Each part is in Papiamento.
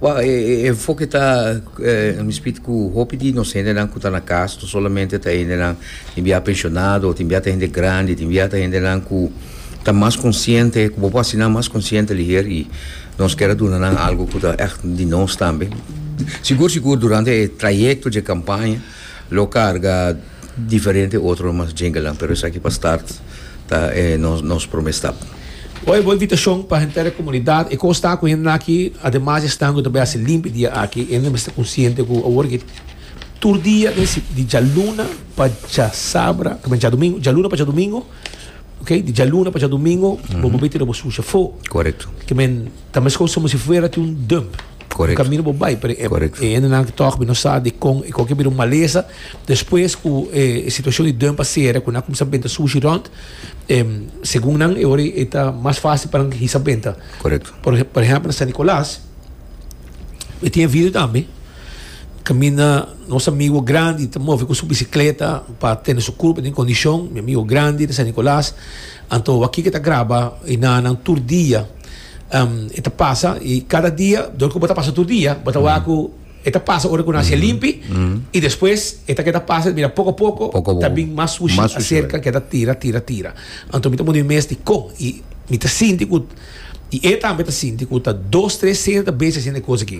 Wou, e enfoke ta mispit ku hopi di nos hendenan ku ta na kas no solamente ta hendenan tin bia penshonado, tin bia ta hende grandi, tin bia ta hendenan ku ta mas konsiente, ku bo por hasi nan mas konsiente liher i nos kier a duna nan algu ku ta ègt di nos tambe. Sigur sigur durante e trayekto dje kampaña. Lo carga diferente otro mas djingalan pero esaki pa start ta e nos prome stap. Bo e bo invitacion pa henter e comunidad e cos ta cu hendenaki ademas di estango ta bay haci limpi dia aki hende mester conciente cu awor taki tur dia den si di djaluna pa djasabra ta menta djadomingo djaluna pa djadomingo ok di djaluna pa djadomingo bo bo bay tira bo sushi afo correcto kimen ta mescos como si fuera tin un dump. Correct. Di camino bo bay, pero e, Correct. e hendenan que toch no sa di con, e con que bira un maleza. Después cu e, e situación di dun pa sera, cu na comenzá benta sushi rond, em, según nan, e ora e ta mas fácil pa nan hisa benta. Correct. Por, ej- por ejemplo, na San Nicolás, e tin e video tambe, caminda nos amigo grandi, ta move cu su bicicleta pa tene su curpa den condicion, mi amigo grandi di San Nicolás, anto wak ki ke ta graba y nananan tur dia. Um, e ta pasa, i kada dia, dor ku bo ta pasa tur dia, bo ta wak ku e ta pasa ora ku nan hasi'a limpi, i despues e ta keda pasa, mira, poko a poko, Poko a poko. ta bin mas sushi, Mas sushi, a serka, keda tira, tira, tira. Anto mi ta wunde mi mes di kon, i mi ta sinti ku, i e tambe ta sinti ku ta dos, tres sende ta besi haciendo e kos aki.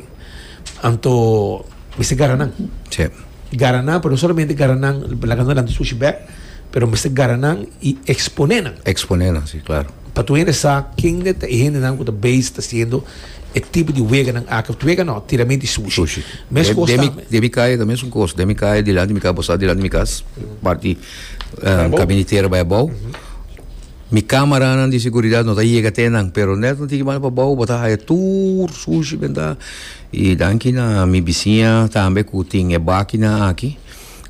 Anto mi ser gara nan, Sí. gara nan, pero no solamente gara nan, laga nan lanti sushi bek, Pero mester gara nan y expone nan. Expone nan, si, claro. Pa tur hende sa kende ta e hendenan cu ta bezig ta haciendo e tipo di weganan aki, of wega no, tiramento di sushi. Sushi. Mes cos Den mi, tambe. den mi kaya ta mesun cos. Den mi kaya dilanti mi kaya bo sa dilanti mi cas, parti Bay abou. kabinitera bay abou. Mi camaranan di seguridad no ta yega te nan, pero net nan tin ki banda pa abou, bo ta haya tur sushi benda. Y danki na mi bisiña tambe cu tin e bakina aki.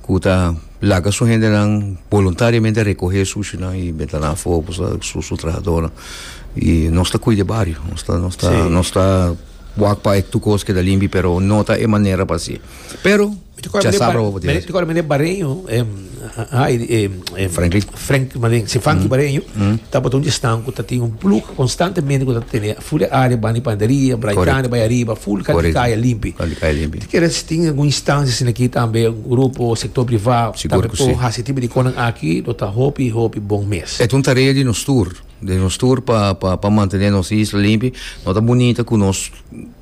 ku ta laga su hendenan boluntariamente rekohé sushinan i meta nan afó ku sa su su trahadónan. I nos ta kuida e bario, nos ta nos ta Sí. nos ta wak pa e tur kos keda limpi pero no ta e manera pa hasi. Pero Mi ta kòrda men e chasabra bar- hopi men- mi ta kòrda men e bareño, em, a- a- Heidi, em, em, Franklin. Frank Maling, si funky bareño, tabato un estan ku ta tin un plug konstantemente ku ta tene full e área bani panaderia, braikane, bai ariba, full kal di kaya limpi. Kal di kaya limpi. Ti kere si tin algun instancia sin aki tambe, un grupo, sektor privá, tambe por hasi tipo di konan aki, lo ta hopi, hopi bon mes. E ta un tarea di nos tur, di nos tur pa, pa, pa mantene nos isla limpi. No ta bunita ku nos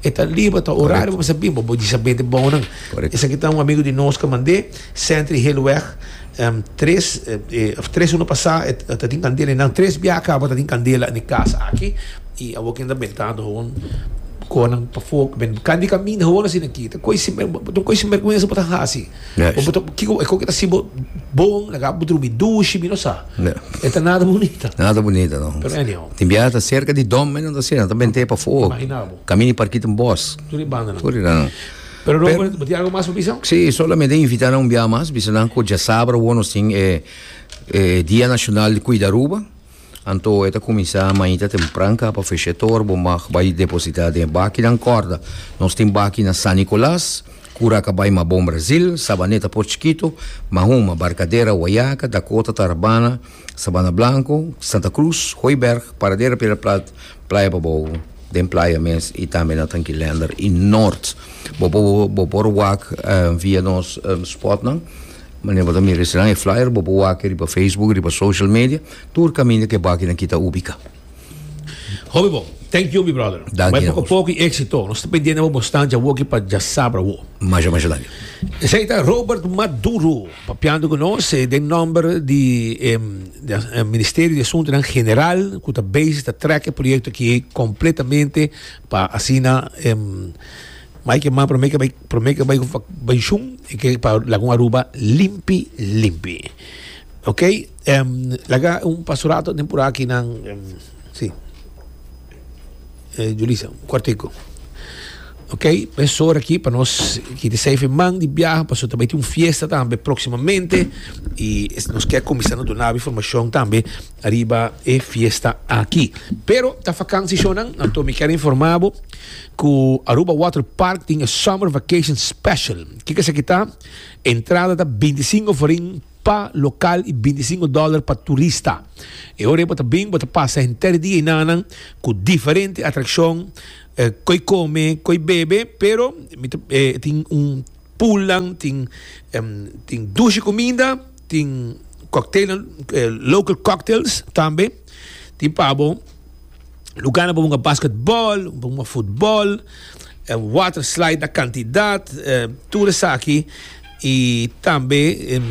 E ta liba, ta orari bo bisa biba, bo disa bende bounan. Esaki ta un amigo di nos ke mand'é, Sentry Heelweg, tres, of tres semana pasá e ta tin kandela i nan tres bia a kaba ta tin kandela na e kasa aki, i awor kende ta beltando houn koa nan pafó, kende kaminda houn a sinda aki, ta koi sin, bo ta un koi sinbergwensa bo ta hasi. Yeah. Bo bo ta kiko e koke ta si bo bon laga bo drumi dushi mi no sa. Yeah. E ta nada bonita. Nada bonita no. Pero anyhow. Tin bia ta cerca di dom men ta sera ta bente pa fo. Imagina bo. Camini parkit in bos. Turi banda no. Turi dan. Pero no bo ti algo mas pa bisa? Si solamente invita nan un bia mas bisa nan ku ja sabra wo nos tin e e dia nacional di cuida Aruba. Anto e ta kuminsá mainta tempran ka pa fesh'é tor bo mag bai depositá den e bakinan kòrda. Nos tin baki na San Nikolas, Kura Kabay Mabon Brazil, Sabaneta Port Chiquito, Mahoma, Barkadera, Wayaka, Dakota, Tarabana, Sabana Blanco, Santa Cruz, Hooiberg, Paradera Piedra Plat, Playa Babou den playa mes i tambe na Tranquilender i Noord. Bo por wak via nos spotnan. Mane bo ta mira esnan e flyer bo por wak e riba Facebook riba social media tur kaminda ke bakinan kita ubika. Hopi bon. Thank you mi brother. Danki Bay poko poko y exito. Nos ta pendiente bo bo stand jawoki pa Jasabra wo. Masha masha danki. Esey ta Robert Maduro papiando cu nos eh, den nomber di em, di as- eh, Ministerio di Asuntonan General cu ta bezig ta trek e proyecto aki completamente pa asina em, Ma e ke man promé ke bai promé ke bai bai shun e ke pa lagun Aruba limpi limpi ok laga un paso rato den por aki nan si Julisa un kuartico ok mes sor aki pa nos kiti seifi man di biaha paso ta bai tin un fiesta tambe proximamente i nos ke kuminsando duna informashon tambe. Riba e fiesta aki. Pero ta vakansi shonan, anto mi ker informa bo ku Aruba Water Park tin e Summer Vacation Special. Kiko esaki ta? Entrada ta binti sinku forin pa lokal i binti sinku dòler pa turista. E ora ei bo ta bin bo ta pasa henter dia i nananan ku diferente atrakshon, ko'i kome, ko'i bebe, pero tin un poolnan, tin tin dushi kuminda. Tin cocktailnan, local cocktails tambe. Tin pa bo lugarnan pa bo bunga basketbal, pa bunga futbal, water slide na cantidad, tur esaki. Y tambe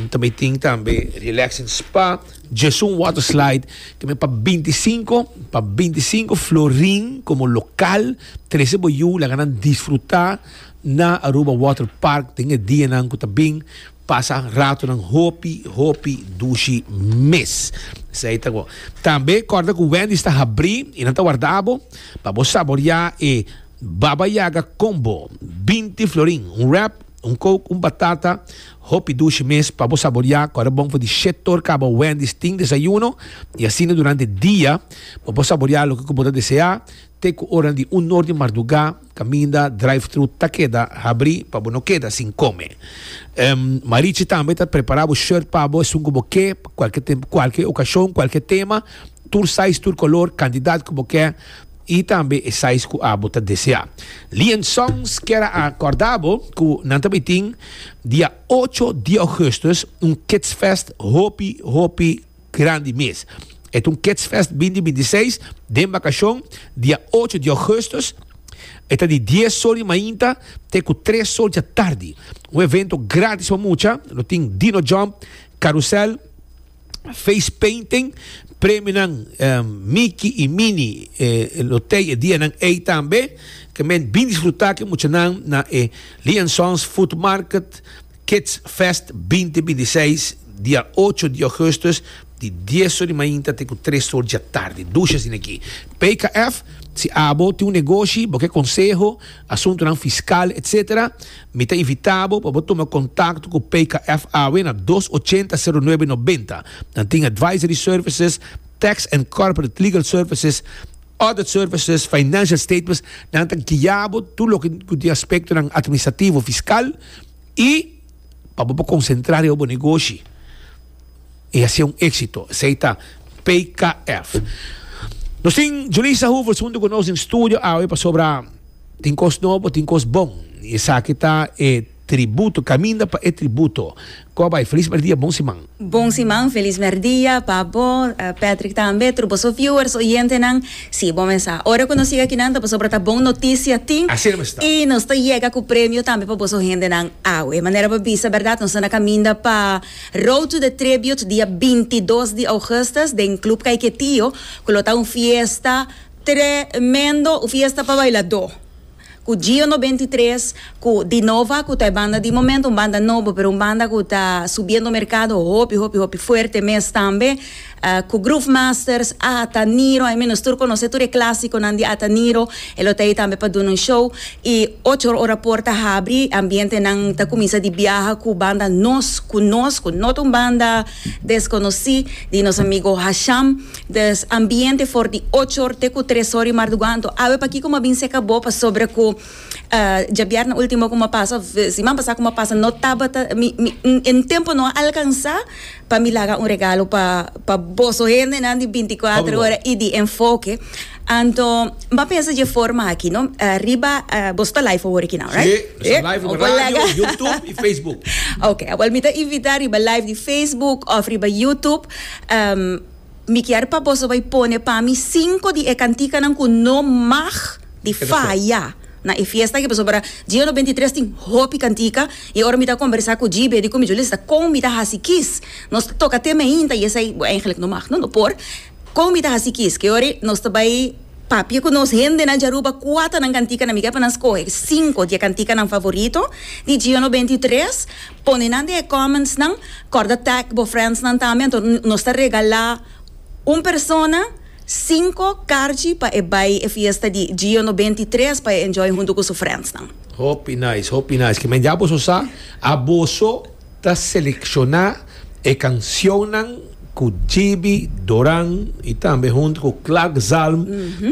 ta bay tin tambe relaxing spa. Djesun water slide ta bay pa binti i sinku, pa binti i sinku florin como local. Trece bo yu laga nan disfruta na Aruba Water Park den e dianan cu ta bin. Pasa ratonan hopi hopi dushi mes. Esei ta bon. Tambe kòrda ku Wendy's ta habrí i nan ta warda bo pa bo saboriá e Baba Yaga Combo, binti florin, un wrap, un coke, un batata, hopi dushi mes pa bo saboriá kòrda bon for di shét tor kaba Wendy's tin desayuno i asina durante dia pa bo saboriá loke ku bo ta deseá te ku oranan di un nor di mardugá. Caminda drive-thru ta keda habri pa bo no keda sin come. Em, Marichi tambe ta prepara bo shirt pa bo, esun cu bo ke, pa cualke tempo, cualke ocasion, cualke tema, tur size, tur color, cantidad cu bo ke y tambe e size cu abo ta desea. Lee and Sons kier a corda bo cu nan ta bay tin, dia ocho di augustus, un Kids Fest hopi, hopi Grandi mes. E ta un Kidsfest bindi bindi seis den bakashon, dia ocho di ougùstùs. E ta di dies so di mainta te ku tres so dja tardi. Un evento gratis pa mucha. Lo tin Dino Jump, Karusèl, Face Painting, premionan Miki i Mini lo tei e dianan ei tambe. Ke men bin disfrutá ku muchanan na e Lee and Sons Food Market. Kids Fest binti binti seis, dia ocho di augustus, di dies or di mainta te ku tres or djatardi. Dushes di neki. PKF, Si abo tin un negoshi, bo ke konseho, asuntunan fiskal, etc. Mi ta invita bo pa bo tuma kontakto ku PKF awe na dos ochenta sero nuebe nobenta. Nan tin advisory services, tax and corporate legal services, Audit services, financial statements, nan ta guia bo tur loke ku tin aspektonan administrativo, fiskal i pa bo por konsentrá riba bo negoshi i hasi un éksito. Esei ta PKF. Nos tin Julissa Hoevers huntu ku nos den studio awe pasobra tin kos nobo, tin kos bon i esaki ta e Tributo caminda pa e tributo. Cor bay feliz merdia bon siman. Bon siman feliz merdia pa bo Patrick tambe tur boso viewers oyentenan si bo mes sa ora cu nos yega akinan ta pasobra ta bon noticia tin y nos ta yega cu premio tambe pa boso hendenan awe manera bo bisa berdad nos ta na caminda pa road to the tribute dia binti dos di augustus den club kaiketio cu lo ta un fiesta tremendo un fiesta pa bailado. Ku Gio no benti tres ku Di Nova ku ta e banda di momento, un banda nobo pero un banda ku ta subiendo merkado hopi hopi hopi fuerte mes tambe. Ku Groove Masters, Ata Niro, ai mi nos tur konosé tur e klasikonan di Ata Niro, e lo ta ei tambe pa duna un show. I ocho ora por ta habri, ambientenan ta kuminsa di biaha ku banda nos ku nos ku no ta un banda. Desconoci di nos amigo Hasham des ambiente for di ocho or te cu tres or di marduga anto awe pakico m'a bin seca bo pasobra cu djabièrna ultimo cu m'a pasa of siman pasa cu m'a pasa no tabata mi mi e tempo no a alcansa pa mi laga un regalo pa pa boso hendenan di binti cuatro ora y di enfoke. Anto, N ta pensa dje forma aki, no? Eh, riba, eh, boso ta live awor aki nau, right? Sí, nos ta live riba Okolega. radio, YouTube y Facebook. Ok, awor mi ta invita riba live di Facebook of riba YouTube. Ehm, mi kier pa boso bay pone pa mi cinco di e cantikanan cu no mag di Keda for. faya na e fiesta aki, pasobra Gio no bentitres tin hopi cantica y ora mi ta conbersa cu GB di Comijulisa con mi ta haci kies. Nos ta toca te mainta y esey, bo, eigenlijk no mag, no, no por. Kon mi ta hasi kiske? Ora nos ta bai papia ku nos hendenan di Aruba kua ta nan kantikanan mi ke pa nan skohe sinku di e kantikanan favorito di Giono beinti i tres pone nan den e kòmentsnan kòrda tag bo friendsnan tambe anto nos ta regalá un persona sinku karchi pa e bai e fiesta di Giono beinti i tres pa e enjoy huntu ku su friendsnan. Hopi nice hopi nice kimen ya boso sa a boso. Ta selecciona e cancionnan cu Jibi Doran y tambe hunto cu Clark Zalm,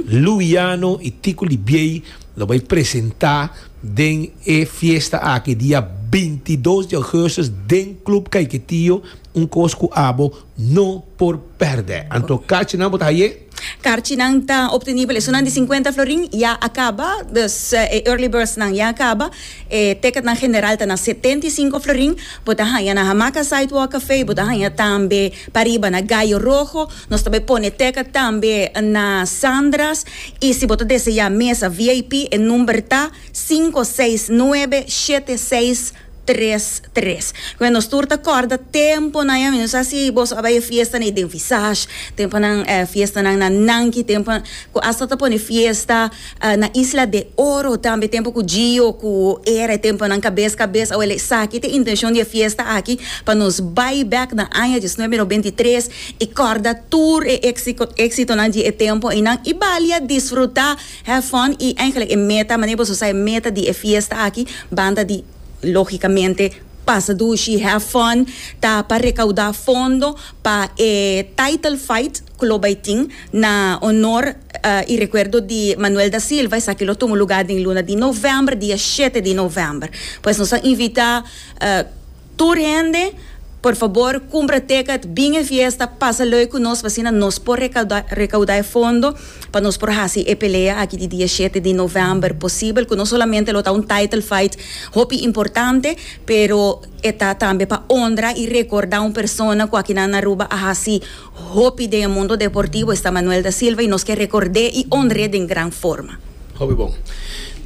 Lou Yano y Tico Libiey lo bay presenta den e fiesta aki dia binti dos di augustus den Club Caiquetío, un cos cu abo no por perde. Anto cachinan bo ta haye? Karchinan ta optenibel esunnan di sinkuenta florin ya a kaba, dus e early birdsnan ya a kaba. E teketnan general ta na setenta i sinku florin. Bo ta haña na Hamaca Sidewalk Café, bo ta haña tambe pariba na Gallo Rojo. Nos ta bai pone teket tambe na Sandra's. I si bo ta deseá mesa VIP, e number ta sinku seis nuebe shete seis. tres tres Cu nos tur ta corda temponan ya mester sa si boso a bay e fiestanan y den Visage temponan eh fiestanan na Nanki tempo cu hasta ta pone fiesta na Isla de Oro tambe tempo cu Gio cu era e temponan cabes cabes awel esaki ta e intencion di e fiesta aki pa nos bay back na aña diecinuebe noventa y tres y corda tur e exitonan di e tempo eynan y bali a disfruta. Have fun i eigenlijk e meta manera boso sa e meta di e fiesta aki banda di logicamente pasa dushi have fun ta pa recauda fondo pa e title fight cu lo bay tin na honor y recuerdo di Manuel Da Silva esaki lo tuma lugar den luna di november dia shete di november pues nos a invita. Tur hende por fabor cumpra tecat bin e fiesta pasa lui cu nos pasina nos por recauda recauda e fondo pa nos por haci e pelea aki di dia shete di november posibel cu no solamente lo ta un title fight hopi importante pero e ta tambe pa honra y recorda un persona cu aki nan na Aruba a haci Hopi den e mundo deportivo esta Manuel da Silva y nos ke rekord'é y onr'é den gran forma. Hopi bon.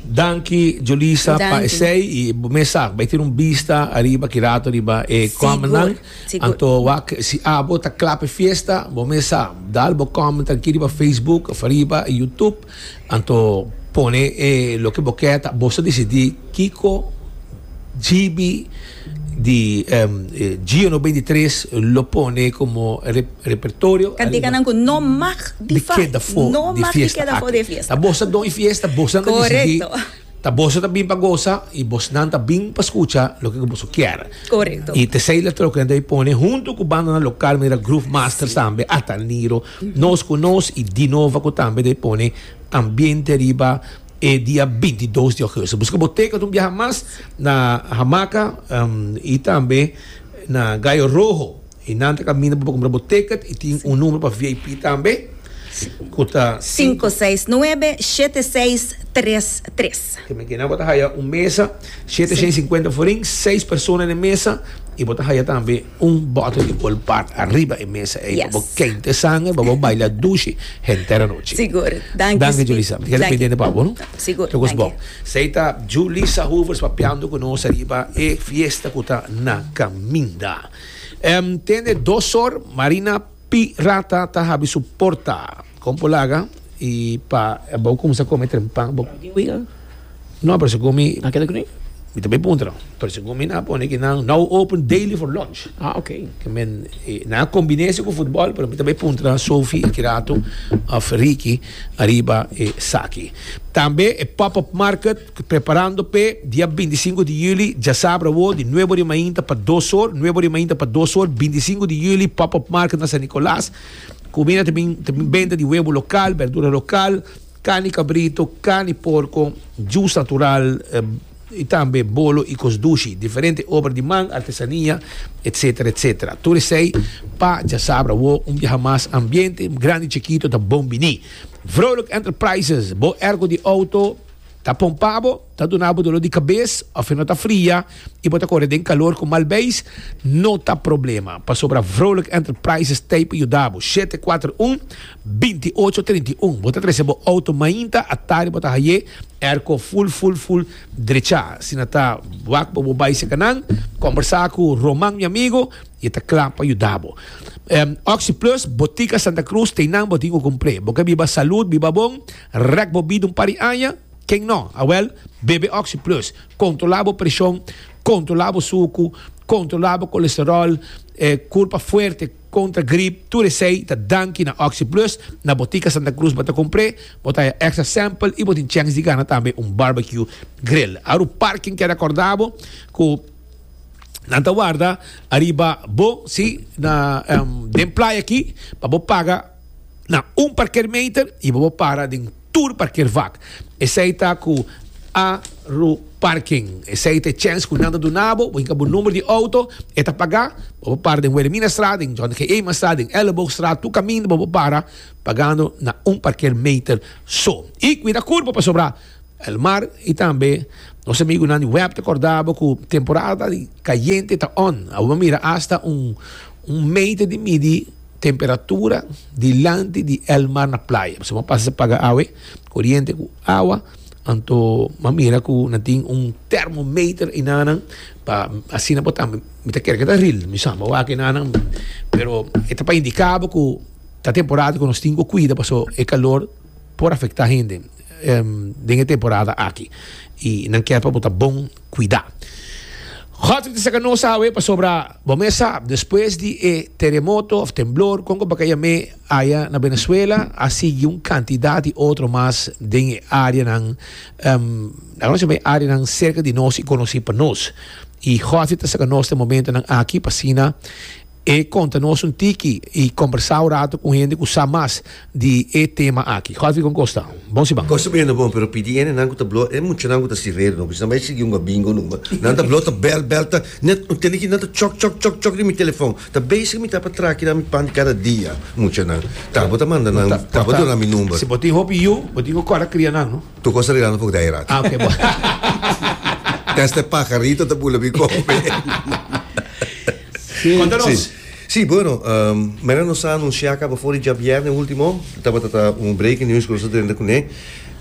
Danki Julissa pa esei y bo mes sa bai tin un bista ariba ki rato riba e commentnan anto wak si abo ta cla p'e fiesta bo mes sa dal bo comment aki riba Facebook of ariba YouTube. Anto pone e loke bo ke ta boso disidi kiko GB di Gio no binti tres lo pone komo repertorio. Kantikanan ku no mag di keda for di fiesta aki. Ta boso don e fiesta boso nan disidi. Ta boso ta bin pa gosa y bosnan ta bin pa scucha loke cu boso kier. Correcto. Y tesey la troken ta pone hunto cu bandanan local manera Groove Masters tambe ata Niro, Nos cu Nos y Dinova cu tambe ta pone ambiente riba e dia bintidos di augusto. Busca bo teken un biaha mas na Hamaca y tambe na Gallo Rojo. Y nan ta caminda pa bo cumpra bo ticket y tin un numero pa VIP tambe cu ta cinco seis nuebe shete seis tres tres. Te meken nan bo ta haya un mesa shete shen cincuenta forin seis persona den mesa y bo ta haya tambe un bottle di Old Park ariba e mesa ey pa bo kente sanger pa bo baila dushi henter anochi. Sigur. Danki Julissa. Mi keda pendiente pa bo no. Sigur. Toco es bon. Sey ta Julissa Hoevers papiando cu nos ariba e fiesta cu ta na caminda. Tende dos or Marina P. Rata ta habi su porta. Kon por laga i pa bo kuminsá kome trempan? Bo tin wi ka? No, pero si ku mi. Nan keda ku mi? Mi tambe puntra nan. Pero si ku mi nan a pone ki nan now open daily for lunch. Ah, ok. Ke men e nan a kombiné esei ku futbòl, pero mi tambe puntra nan Sofi e Kirato òf Riki ariba esaki. Tambe e pòp òp market. Preparando p'e dia bintisinku di yüli, djasabra awor, di nuebe ora di mainta pa dos or, nuebe ora di mainta pa dos or, bintisinku di yüli, pop-up market na San Nicolas. Kuminda ta bin, ta bin benta di webo lokal, berdura lokal, carni kabrito, carni porko, jus natural, i tambe bolo i kos dushi, diferente obra di man, artesania, etsetera, etsetera. Tur esei pa djasabra awor, un biaha mas ambiente, grandi i chikito ta bon bini. Vrolijk Enterprises, bo erko di outo. Ta pompa bo, ta duna bo doló di kabes òf e no ta fria i bo ta kore den kalor ku mal beis? No ta problema, pasobra Vrolijk Enterprises ta ei pa yuda bo. Shete kuater un, binti ocho trinta i un Bo ta trese bo outo mainta atá riba bo ta haye airco ful ful ful drechá. Si nan ta wak bo bo bai sekanan, kombersá ku Roman mi amigo i e ta kla pa yuda bo. Oxyplus Botica Santa Cruz ta einan bo tin ku kumpré. Bo ke biba salud, biba bon. Rek bo bida un par di aña, ken no? Awel, bebe Oxy Plus. Kontrolá bo preshon, kontrolá bo suku, kontrolá bo kolesteròl, e kurpa fuerte kontra grip, tur esei ta danki na Oxy Plus. Na Botica Santa Cruz bo ta kumpr'é, bo ta haña èkstra sèmpel i bo tin chèns di gana tambe un barbecue grill. Awer un par ken keda kòrda bo ku nan ta warda ariba bo, sí, na den playa akí pa bo paga. na un parkermeter y bo bo para den tur parkervak. Esey ta cu Aruparking. Esey ta e chens cu nan ta duna bo. Bo hinca bo number di auto, e ta paga. Bo bo para den Wilhelminastraat, den John G. Eemanstraat, den Elleboogstraat, tur caminda bo bo para, pagando na un parkermeter so. Y cuida curpo pasobra Elmar y tambe nos amigunan di web ta corda bo cu temporada di cayente ta on. Awor bo mira hasta un meter di midi. Temperatura dilanti di el mar na playa. Pasobra bo pasa paga awe, koriente ku awa, anto bo mira ku nan tin un termometer enanan pa asina bo ta mi ta kere ke ta ril mi samba wak enanan pero e ta pa indika bo ku ta temporada ku nos tin ku kuida pasobra e kalor por afektá hende den e temporada aki i nan kier pa bo ta bon. cuida. Godfrey ta saca nos awe pasobra bo mes sa despues di e teremoto of temblor con cu pa caya me aya na Venezuela a sigui un cantidad di otro mas den e areanan um a conoci me areanan cerca di nos y conoci pa nos y Godfrey ta saca nos na e momentonan aki pa asina E konta nos un tiki i kombersá un ratu ku un hende ku sa mas di e tema aki. Godfrey kon kosta bon si ban? Kosta bendo bon, pero pidi hendenan ku ta bló, e muchanan ku ta sireru no, ku esnan bai sigui ungua bingo numa, nan ta bló, ta bèl bèl, ta ne un tende ki nan ta chòk chòk chòk chòk den mi telefòn, ta bezig mi ta pa traki nan mi pan di kada dia, muchanan, ta bo ta manda nan, ta bo ta duna mi number. Si bo tin hopi yu, bo tin ku kòrda kria nan, no? Tur kos ta regla no for dai ratu. Ah, ok, bon. Tèstè pajarito ta bula mi kòmpe. Konta nos. Sí, bueno, manera nos a anunsiá kaba for di djabièrnè último, tabata ta un breaking news ku nos ta drenta kuné,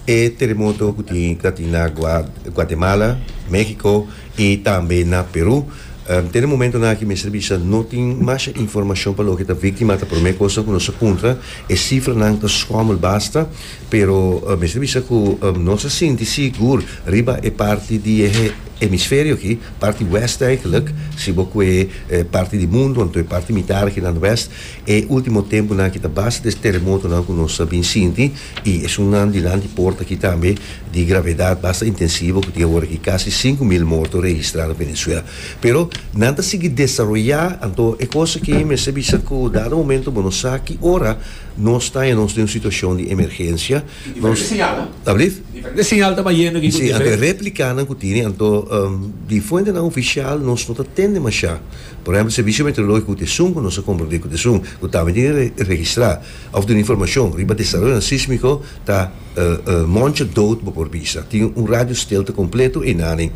e teremoto ku tin ta tin na Guatemala, México i tambe na Perú. Den e momentonan aki mester bisa no tin masha informashon pa loke ta víktima ata. Promé kos ta ku nos a puntra, e sifranan ta skòmel basta? Pero mester bisa ku no sa sinti sigur riba e parti di e hemisferio aki, parti wèst eigenlik, si bo kue e parti di mundu anto e parti mitar aki nan wèst, e último tempunan aki ta basta des teremotonan ku nos a bin sinti i esunnan dilanti por ta ki tambe di gravedat basta intensivo ku tin awor aki kasi sinku mil morto registrá na Venezuela. Pero nan ta sigui desaroyá anto e kos aki mester bisa ku dado momento bo no sa ki ora Nos ta e nos den un situashon di emergensia. Tin diferente señal nan. Ta bliv? Diferente señal ta bayendo aki ku diferente. Si, anto e replikánan ku tini, anto di fuentenan ofisial nos no ta tende mashá. Por ehèmpel, Servisio Meteorológiko ut esun ku nos a komprondé ku ta esun, ku tambe tin e registrá òf duna informashon riba desaroyonan sísmiko ta moncha dout bo por bisa. Tin un radio stilte kompleto einane.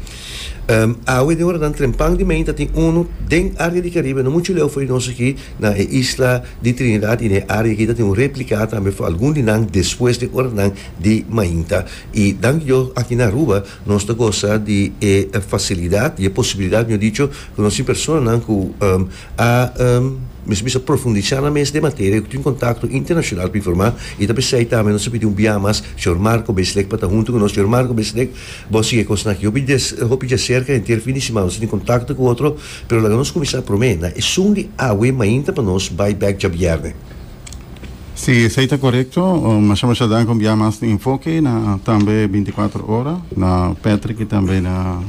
Awe den ora nan trempan di meinta tin unu den área di Karibe no muchu leu for di nos aki. Na e isla di Trinidad y na e area aki ta tin un replica tambe for algun di nan despues di e oranan di mainta. Y danki Dios aki na Aruba nos ta goza di e facilidad y e posibilidad mejor dicho cu nos tin personanan cu a mes bisa profundiza nan mes den e materia y cu tin contacto internacional pa informa y ta pesey tambe nos ta pidi un biaha mas señor Marco Beslek pa ta hunto cu nos. Señor Marco Beslek bo a sigue e cosnan aki hopi hopi di acerca henter fin di semana nos ta tin contacto cu otro. Pero laga nos kuminsá promé na esun di awe mainta pa nos bai bèk djabièrnè. Si esei ta korekto, masha masha dank om bia mas di Enfoke na tambe Bintikuater Ora, na Patrick i tambe na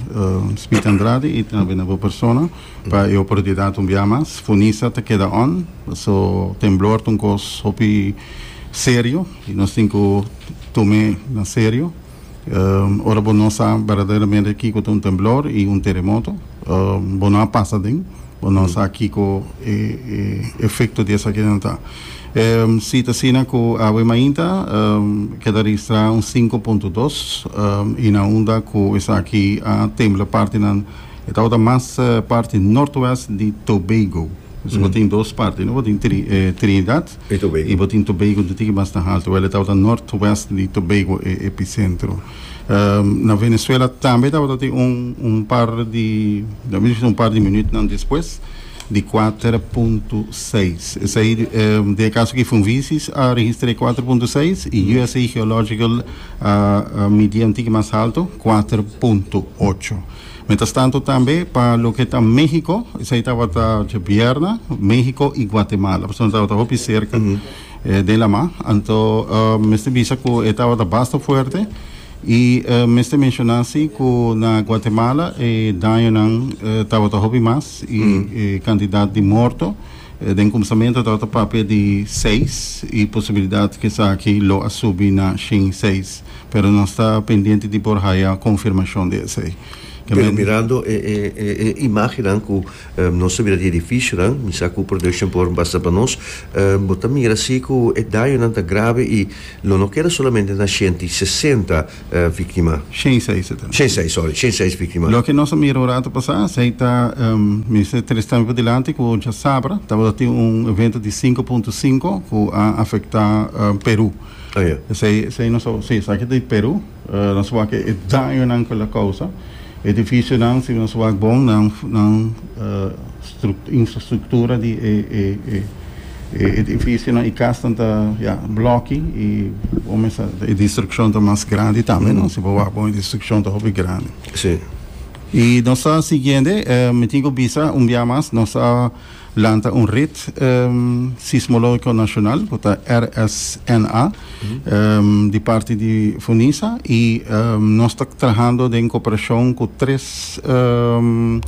Smith Andrade i tambe na bo persona pa e oportunidat un bia mas. Funisa ta keda on, so temblor ta un kos hopi serio i nos tin ku tum'é na serio. Ora bo no sa berdaderamente kiko ta un temblor i un teremoto, bo no a pasa den, bo no sa kiko e efekto di esakinan ta. Si ta asina ku awe mainta keda registrá un sinku punto dos i na unda ku esaki a tembla partinan, e tabata mas parti nortwest di Tobago. Bo tin dos parti, no bo tin Trinidad Di Tobago. Bo tin Tobago ntiki mas na haltu wèl e tabata northwest di Tobago e episentro. Na Venezuela tambe tabata tin un un par di ta mester un par di minütnan despues di kuater punto seis. Esei den e kaso ki Funvisis a registr'é kuater punto seis i usa Geological a a midié ntiki mas haltu kuater punto ocho. Mientras tanto tambe pa loke ta Mexico, esei tabata dje bierna, Mexico y Guatemala, pasobra tabata hopi cerca den la mar, anto mester bisa cu e tabata basta fuerte y mester menciona si cu na Guatemala e dañonan tabata hopi mas y e cantidad di morto. Den kumsamentu tabata papia di seis i posibilidat ku esaki lo a subi na shin seis, pero nos ta pendiente di por haya konfirmashon di esei. Pero mirando e e imagennan ku nos ta mira di edifishonan, mi sa ku production por basa pa nos, bo ta mira si ku e dañonan ta grave i lo no keda solamente na shenti sesenta Victima. Shen Sai sa ta. Shen Sai, sorry. Shen Sai es victima. Loke nos a mira un rato pasá, Sai ta, mester tres tambe padilanti ku djasabra tabata tin un evento di sinku punto sinku ku a afektá Perú. Oh ya. Esei, esei nos a, si, esaki ta di Perú. Nos a wak e dañonan ku el a kousa. Edifisionan, si nos a wak bon, nan, nan. Infrastruktura di e edifisionan i kasnan ta ya blòki i bo mester sa e destrukshon ta mas grandi tambe no. Si bo wak bon e destrukshon ta hopi grandi. Sí. I nos ta siguiende, mi tin ku bisa un bia mas nos a lanta un rit sismológiko nashonal ku ta RSNA. di parti di Funisa y nos ta trahando den cooperacion cu tres den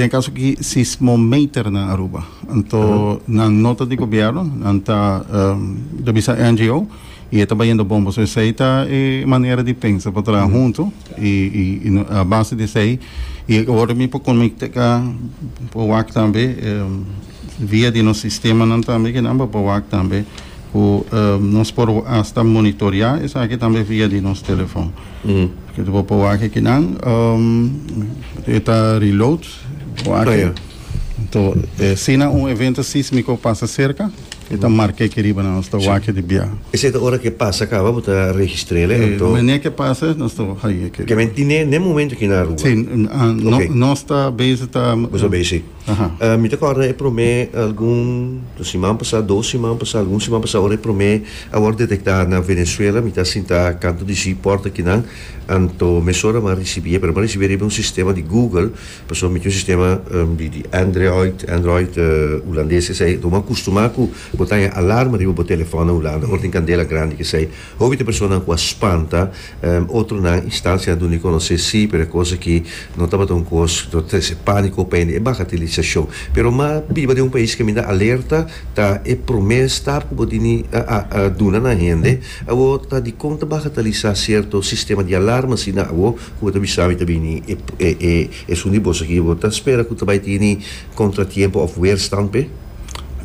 e caso aki sismometernan Aruba anto nan no ta di gobierno nan ta ta bisa NGO y e ta bayendo bon pasobra esey ta e manera di pensa pa traha hunto y y a base di esey y awor mi por conecta ca por wak tambe. Via di nos sistemanan tambe ke nan bo por wak tambe ku nos por asta monitorea esaki tambe via di nos telefon. Ke ta bo por wak aki nan e ta reload bo aki. To si nan un evento sísmiko pasa serka e ta marke aki riba nan nos ta wak di bia. Esei ta ora ke pasa kaba bo ta registrel e anto. Mane ke pasa nos ta haña aki riba. Ke men tine n'e momento ki nan rua. Si nos ta bezi ta. Bo ta bezi. Mi ta kòrda e promé algun siman pasá, dos siman pasá, algun siman pasá ora e promé a wòrdu detektá na Venezuela. Mi ta sintá kantu di si pòrta kinan. Anto mesora mi a risibié, pero mi a risibié riba un sistema di Google, pasobra mi tin un sistema di Android, Android Hulandes esei. Bo a kustumá ku bo ta haña alarma riba bo telefòn na Hulanda ora tin kandela grandi esei. Hopi ta personanan ku a spanta, otronan instancia a dun'e konos'é sí, pero e kos akí no tabata un kos ku ta trese pániko pa hende. E baka te lisashon. Pero m'a biba den un pais kaminda alerta ta e promé stap ku bo dini duna na hende. Awor ta dikon ta baka ta lisá sierto sistema di alarma asina awor ku bo ta bisa mi ta bini e esun di bos akí? Bo ta spera ku ta bai tini kontratiempo òf weerstand p'e?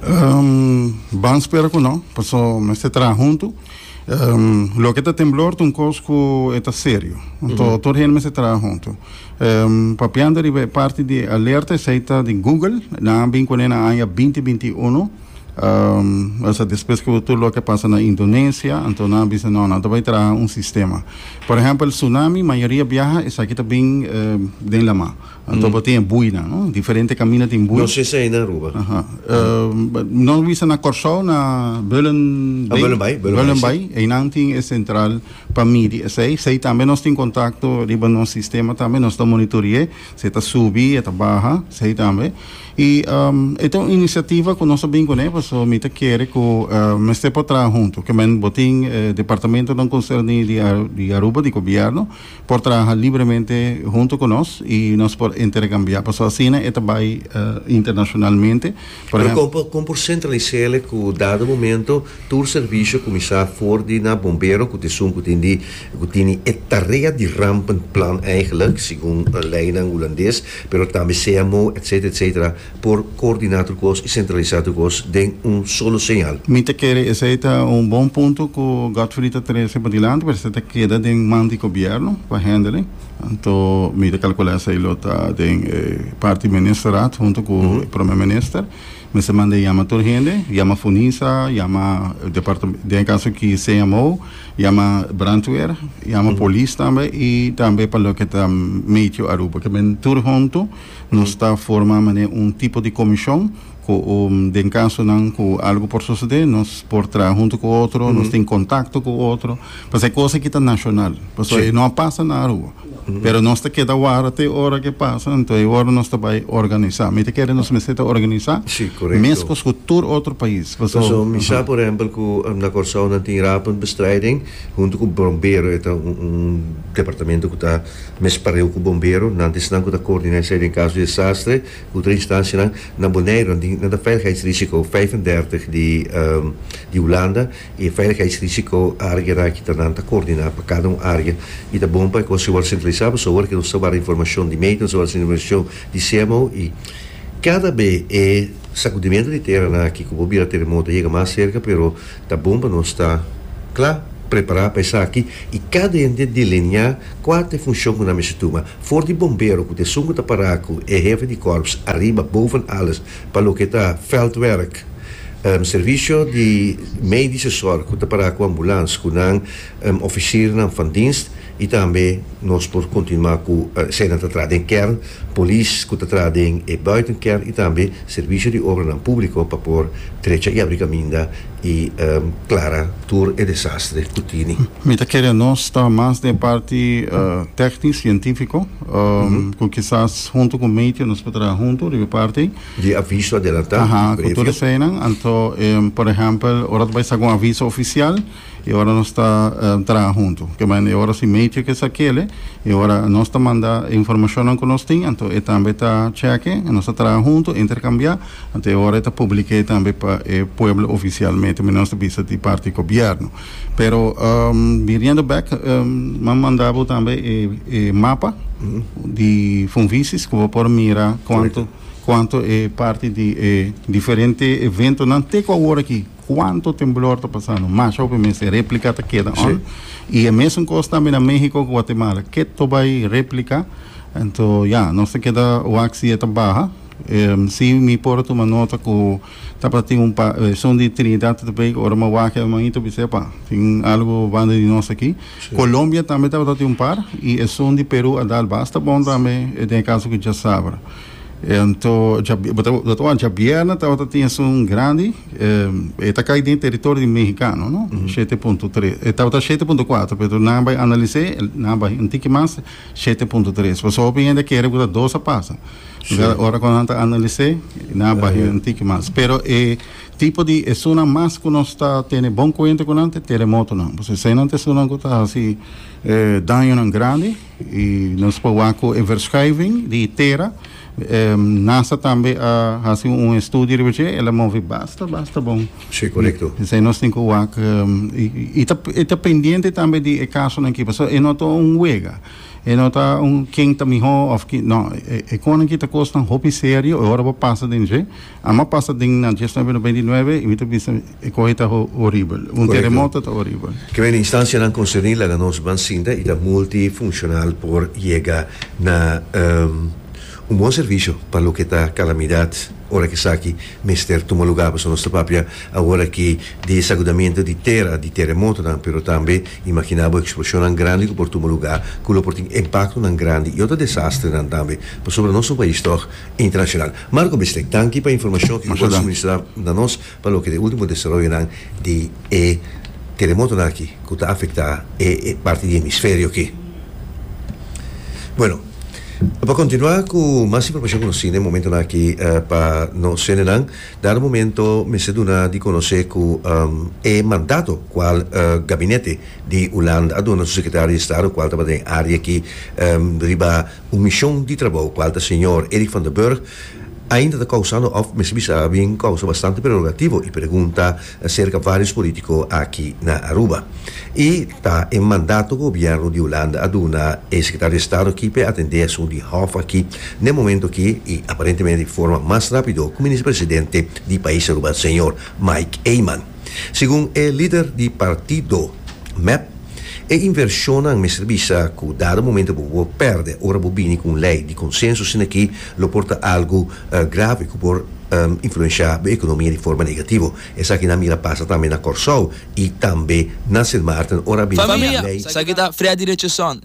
Um, ban spera ku no, paso mester traha huntu. Um, loke ta temblor ta un kos ku e ta serio. Anto tur hende mester traha huntu. Um, papiando riba e parti di alerta, esei ta di Google, nan a bin kuné na aña 2021. Um, asa despues ku tur loke a pasa na Indonesia, anto nan a bisa no, nan ta bai traha un sistema. Por ehempel, tsunami, mayoria biaha esaki ta bin eh, den lama. Anto bo tin e buinan, no? Diferente kaminda tin bui. No si esei na Aruba. Aha. Nos bisa na Kòrsou, na Beulen Bay. Ah, Beulen Bay, Beulen Bay, Beulen Bay. Einan tin e sentral pa midi esei. Sei tambe nos tin kontakto riba nos sistema tambe. Nos ta monitori'é si e ta subi, e ta baha, sei tambe. I e ta un inisiativa ku nos ta bin kuné pasobra mi ta kere ku mester por traha huntu. Ke men bo tin e departamentonan konserní di Aruba, di Gobierno. por traha libremente hunto ku nos i nos por interkambiá paso asina e ta bai internashonalmente por Pero ehem. kon kon por sentralisele ku dado momento tur servisio kuminsá for di na bombero ku ta esun ku tin di ku tini e tarea di rampenplan eigelijk segun leinan hulandes pero tambe CMO etcetera etcetera por coordina tur cos y centralisa tur cos den un solo señal. Mi ta kere esey ta un bon punto cu Godfrey ta trece padilanti, pero esey ta keda den man di Gobierno pa hendele. Anto mi ta calcula esey lo ta den e parti Ministerraad hunto cu e Prome Minister. Mester manda e yama tur hende, yama Funisa, yama departa, den e caso aki CMO, yama Brandweer, yama Polis tambe y tambe pa loke ta Meteo Aruba, ke men tur hunto. Nos ta forma manera un tipo di comision cu den casonan cu algo por sucede nos por traha hunto cu otro, nos tin contacto cu otro, pasobra e cosa aki ta nacional, pasobra e no a pasa na Aruba, pero nos ta keda wara te ora cu e pasa, entonces e ora nos ta bay organisa, mi ta kere nos mester ta organisa mescos cu tur otro pais, pasobra. Pasobra mi sa por ehempel cu na Corsou nan tin Rapenbestrijding hunto cu Brombero e ta un departamento cu ta. Mes pareu ku bombero nan ta esnan ku ta koordiná esei den kaso di desastre. Utra instanshianan na Boneiru nan tin nan ta veiligheidsrisiko vijf en dertig di di Hulanda i e veiligheidsrisiko área na kita nan ta koordiná pa kada un área i ta bon pa e kos ei wòrdu sentralisá pasobra awor ke nos ta wara informashon di meta nos ta wara informashon di CMO i kada be e sakudimentu di teranan aki ku bo bira teremoto a yega mas serka pero. Ta bon pa nos ta cla prepara pa esaki y cada hende delinia cua ta e funcion cu nan mester tuma. For di bombero cu ta esun cu ta para cu e hefe di corps ariba boven alles pa loke ta veldwerk, servicio di medische zorg cu ta para cu ambulance cu nan oficiernan van dienst, Y tambe nos por continua cu esainan ta traha den kern, polis cu ta traha den e buiten kern y tambe servicio di obranan publico pa por trecha y abri caminda y clara tur e desastre cu tini. Mi ta kere nos ta mas den e parti tecnic, cientifico, cu kisas hunto cu Matthew nos por traha hunto riba e parti ey. Di aviso adelanta, previo. Cu tur esainan, anto por ehempel ora ta bay sa cu un aviso oficial. e ora nos ta traha huntu. Ke manera e ora si Matrix e sa kele, e ora nos ta manda e informashonnan ku nos tin, anto e tambe ta chèk'e, nos ta traha huntu, interkambiá, anto e ora e ta publik'é tambe pa e pueblo ofisialmente, manera nos ta bisa di parti gobièrnu. Pero, biriendo bèk, nan manda bo tambe e e mapa di Funvisis ku bo por mira kuantu kuantu e parti di e diferente eventonan te ku awor aki. Cuanto temblor ta pasando? Masha hopi mes e replica ta keda on. Y e mesun cos tambe na Mexico cu Guatemala. Ke to bay replica? Ento ya, nos ta keda wak si e ta baha. Em, si mi por a tuma nota cu tabata tin un pa, e son di Trinidad ta bay cu ora mi a wak e manito bis'e, epa, tin algo banda di nos aki. Colombia tambe tabata tin un par y e son di Peru a dal basta bon tambe den e caso cu djasabra. Ento, dja, bo ta, bo ta wak, djabierna tabata tin esun grandi. E ta kai den teritorio di mehikano, no? Shete punto tres. E tabata shete punto kuater, pero nan a bai analis'é, nan a bai un tiki mas, shete punto tres. Pasobra hopi hende a kere ku ta dos a pasa. Lugá ora ku nan ta analis'é, nan a bai un tiki mas. Pero e tipo di esunnan mas ku nos ta tene bon kuenta ku nan ta e teremotonan. Pasobra eseinan ta esunnan ku ta hasi dañonan grandi. I nos por wak ku e verschuiving di tera. NASA tambe a hasi un estudio riba dje. El a move basta, basta bon. Sí, korekto. P'esei nos tin ku wak. I e ta pendiente tambe di e kasonan aki. Pasobra e no ta un wega. E no ta un ken ta mihó òf kin. No. E konan aki ta kosnan hopi serio e ora bo pasa den dje. Amo a pasa den nan dies noviembro veintinueve y mi ta bisa e cohe ta horibel. Un teremoto ta horibel. Ke mei instancianan concerni laga nos ban sinta y ta multifuncional por yega na un bon servicio pa loke ta calamidad ora ke esaki mester tuma lugar. Pasobra nos ta papia awor aki di sacudamento di tera, di teremotonan, pero tambe imagina bo explocionnan grandi cu por tuma lugar cu lo por tin impactonan grandi y otro desastrenan tambe pasobra nos ta un pais toch internacional. Marco Bistek, Tanki pa e informashon ku bo a suministrá na nos pa loke ta e último desaroyonan di e teremotonan aki ku ta afektá e parti di hemisferio aki. Bueno, pa kontinuá ku mas informashon ku nos tin den momentonan aki pa nos hendenan, dado momento mester duna di konosé ku e mandato kual gabinete di Hulanda a duna su sekretari di Estado kual tabata den área aki riba Un mishon di trabou kual ta señor Eric van der Burg ainda ta kousando òf mester bisa bin kousa bastante prerogativo i pregunta serka vários polítiko aki na Aruba. I ta e mandato ku gobièrnu di Hulanda a duna e sekretario di Estado ki p'e atendé asuntu di hòf aki n'e momentu aki i aparentemente di forma mas rápido ku Minister Presidente di pais Aruba señor Mike Eman. Segun e lider di partido, mep, e invershonnan mester bisa ku dado momento bo por pèrdè ora bo bini ku un lei di konsenso asina ki lo por ta algu grave ku por influenshá bo ekonomia di forma negativo. Esaki nan mira pasa tambe na Kòrsou i tambe na Sint Maarten ora a bini ku un lei. Famia, esaki ta fria di recheson.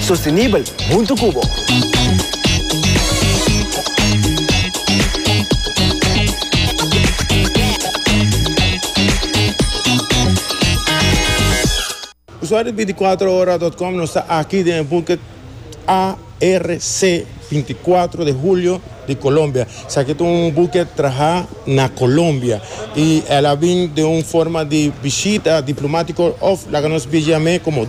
Sostenibel huntu cu bo. Usuario di Veinticuatrohora dot com nos ta aki den e buket ARC Veinticuatro de Julio di Colombia. Esaki ta un buket traha na Colombia y el a bin den un forma di bishita diplomatico of laga nos bijiam'e como.